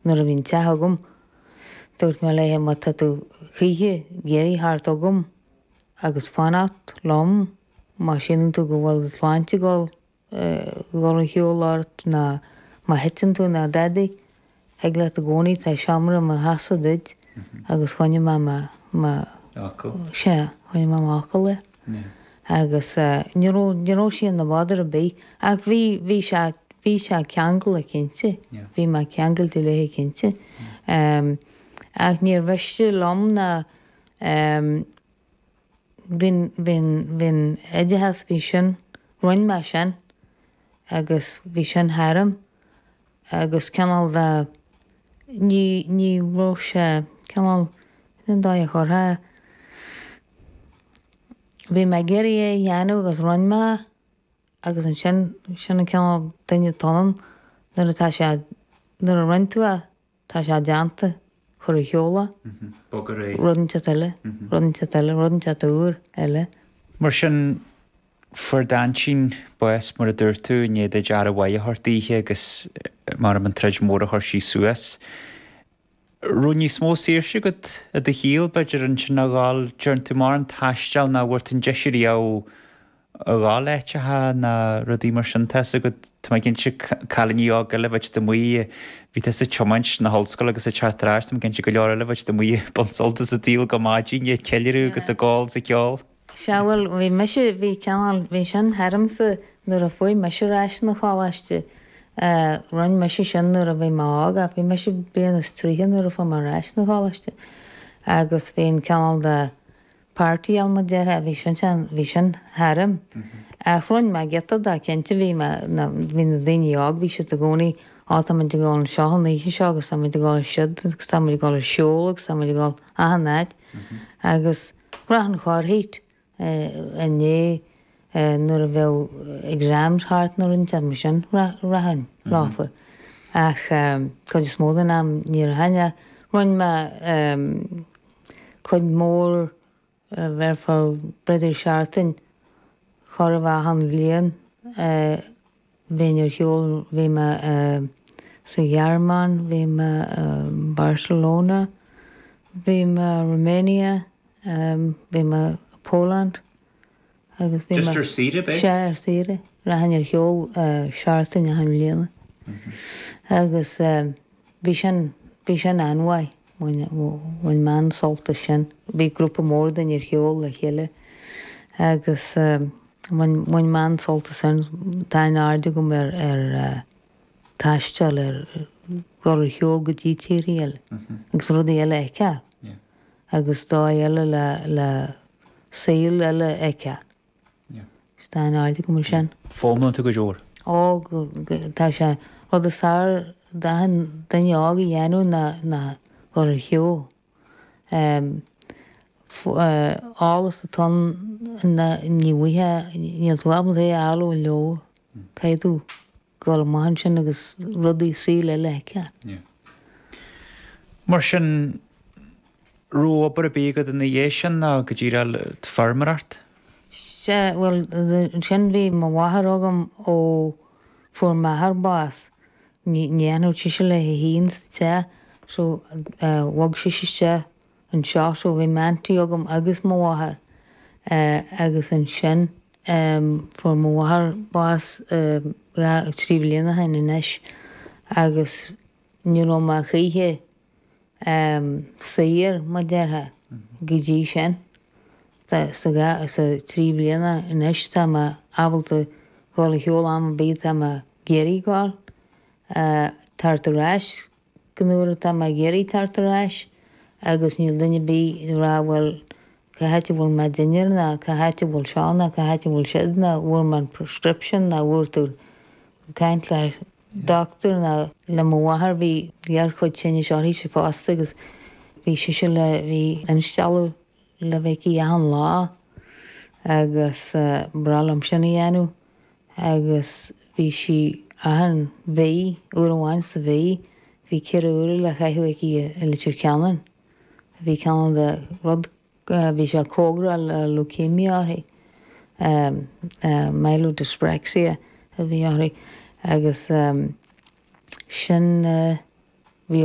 Nuair a bhí an teach agam, dúirt mé léithe má tá tú choíche ag iarraidh theacht chugam agus fanacht liom má síleann tú go bhfuil do shláinte ag dhul ar shiúl ort ná má thiteann tú ná dadaí, thig leat i gcónaí, tá seomra i mo theachsa duit agus choinnigh mé mo, mo, sea, choinnigh mé m'fhocal air. agus ní raibh, ní raibh sí ina bother ar bith ach bhí, bhí sé, bhí sé ceangailte cinnte, bhí mé ceangailte léithe cinnte ach níor mhiste liom ná bhí'n, bhí'n, bhí'n oideachas, bhí sin, rinn mé sin agus bhí sin tharam. agus cineál de, ní, ní raibh sé, cineál, cén dóigh a chuirfeá é, bhí mé ag iarraidh é a dhéanamh agus rinne mé é agus ansin, sin an cineál duine atá ionam, nuair atá sé, nuair a rinne tú é, tá sé déanta, cuir ar shiúl é, rud inteacht eile, rud inteacht eile, rud inteacht úr eile. Mar sin, Fuair d'aintín bás, mar a dúirt tú, i ndiaidh duit aire mhaith a thabhairt daoithe agus, m'anam, an troid mhór a chuir sí suas. raibh níos mó saoirse agat i do shaol, b'fhéidir, ansin a dhul, deireann tú, mar an taisteal ná a bhfuair tú an deis riamh a dhul áiteacha ná rudaí mar sin tá's agat, tá mé cinnte, cailíní óga eile bheadh amuigh ag, bhí tusa ag tiomáint 'na hollscoile agus ag teacht ar ais, tá mé cinnte go leor eile bheadh amuigh ag baint suilt as an tsaol go maidin ag ceiliúradh agus ag ól is ag ceol. Seadh bhuel, bhí mise, bhí cineál, bhí sin tharamsa nuair a fuaigh mise ar ais 'na choláiste. Rinn mise sin nuair a bhí mé óg ach bhí mise bliain is tríocha nuair a fuaigh mé ar ais 'na choláiste agus bhí an cineál de party element déarfá, bhí sin, bhí sin tharam. Ach rinn mé giota de, cinnte, bhí mé, na, bhí na daoiní óga, bhí siad i gcónaí, á táimid ag dul anseo an oíche seo agus táimid ag dul ansiúd agus táimid ag dul ar shiúl agus táimid ag dul achan áit agus, Bhraith an Chárthaigh a ndé nuair a bheadh exams thart nó rud deas mar sin. Bhraith an lámhfar. Ach cuid is mó den am níor tháinig. Roinn mé cuid mór therefore b'fheidir seartain chóir a bheith ann bhliain Bheinn ar shiúl, bhí mé sa Ghearmáin, bhí mé i mBarcelona, bhí mé i Romania, bhí mé i Poland agus bhí mé. Just ar saoire ab é? Sea, ar saoire. Rachainn ar shiúl seachtain achan bhliain. Agus bhí sin, bhí sin an-mhaith. Bhain mé an-sult as sin. Bhí grúpa mór daoine ar shiúl le chéile agus bhain mé an-sult as sin. Tá an-aird agam ar taisteal ar ghoil ar shiúl go dtí tír eile agus rudaí eile a fheiceáil agus dóigh eile le saol eile a fheiceáil. Is tá an-aird agam ar sin. Fóghanta go leor. Ó, tá sé. Rud is fearr d'achan duine óg a dhéanamh ná a ghoil ar shiúl. Eolas atá ann, níl tú ábalta é a fháil ó leabhar. Caithfidh tú. Goil amach ansin agus rudaí saoil eile a fheiceáil. Mar sin, raibh obair ar bith agat ina dhiaidh sin ná go díreach feirmeoireacht? Sea, bhuel, ansin bhí mo mháthair agam ó fuair m'athair bás. Ní fhanfadh sise léi féin sa teach so bhog sise isteach Anseo so bhí m'aunty agam agus mo mháthair eh agus ansin em fuair mo mháthair bás em dhá, trí bhliana ó shin anois agus ní raibh mé choíche em saor mar a déarfá go dtí sin. Tá sa dhá, sa trí bhliana anois tá mé ábalta dhul ar shiúl am ar bith atá mé ag iarraidh dhul eh teacht ar ais Gach uair atá mé ag iarraidh teacht ar ais agus níl duine ar bith ag rá bhuel cá háit a bhfuil mo dhinnéar ná cá háit a bhfuil seo ná cá háit a bhfuil siúd ná bhfuair mé an prescription ná bhfuair tú caint le dochtúir ná le mo mháthair bhí gearrchuid tinnis uirthise fosta agus bhí sise le bhí instealladh le bheith aici achan lá agus bhreá liom sin a dhéanamh. agus bhí sí achan mhí, uair amháin sa mhí, bhí ceithre uaire le caitheamh aici i Leitir Ceanainn. Bhí cineál de rud, bhí sé cóngarach le leukemia uirthi, myelodyspraxia a bhí uirthi, agus sin bhí